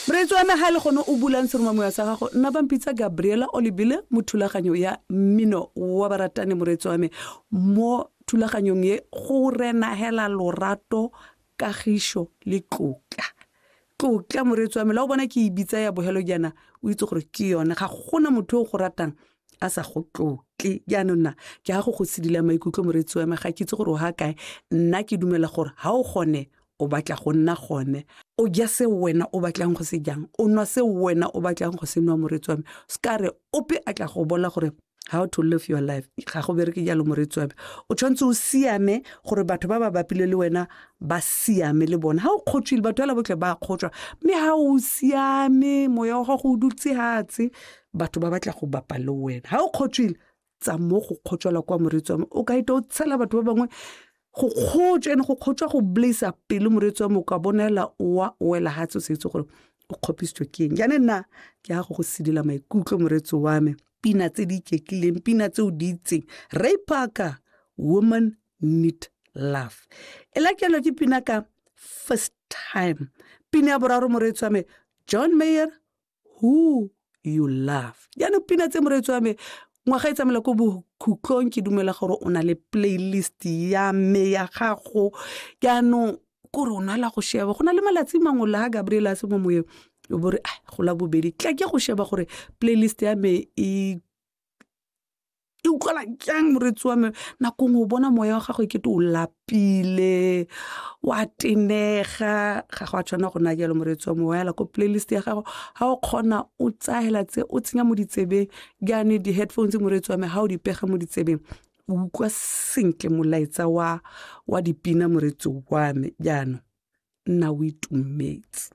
Moreetsi wa naga le gone o bulang seromamoya sa gago nna ba mpitsa gabriela olebile mo thulaganyo ya mmino wa baratani moreetsi wa me mo thulaganyong ye go renagela lorato kagišo le tlotla tlotla moreetsi wa me la o bona ke e bitsa ya bogelo jaana o itse gore ke yone ga gona motho yo o go ratang a sa go tlotle jaanong nna ke ya go go sedila maikutlo moreetsi wa me ga ke itse gore o ga kae nna ke dumela gore ga o gone o batla go nna gone o ja se wena o batlang go se jang o nwa se wena o batlang go se nwa moretsi wa me se ka re ope a tla go bola gore how to live your life ga go bereke jalo moretsi wa me o tshwanetse o siame gore batho ba ba bapile le wena ba siame le bona ga o kgotswile batho fela botlhe ba kgotswa mme ga o siame moya wa gago o dutse hatse batho ba batla go bapa le wena ga o kgotswile tsa mo go kgotswela kwa moreetsi wa me o ka ita o tshela batho ba bangwe go kgotswa ene go kgotswa go blaisa pele moreetsi wa me o ka bonela oa oela ga tse o sa itse gore o kgopisitswe ke eng jane nna ke ya go go sedila maikutlo moreetsi wa me pina tse di iketlileng pina tse o di itseng ray parker woman need love e lakelwa ke pina ka first time pina ya boraro moreetsi wa me john mayer who you love jaanong pina tse moreetsi wa me ngwaga e tsamela ko bokhutlong ke dumela gore o na le playlist ya me ya gago jaanong kore o nala go sheba go na le malatsi mangwe la ga gabriel a se mo moyeng o bore a go la bobedi tla ke go sheba gore playlist ya me e e utlwala jang moretsi wa me nako ngwe o bona moya wa gago e kete o lapile wa tenega ga go a tshwana go na jalo moretsi wa me wa yala ko playlist ya gago ga o kgona o tsayela tse o tsenya mo ditsebeng jaane di-headphones moretsi wa me ga o di pega mo ditsebeng o utlwa sentle molaetsa wa wa dipina moretsi wa me jaanong nna o itumetse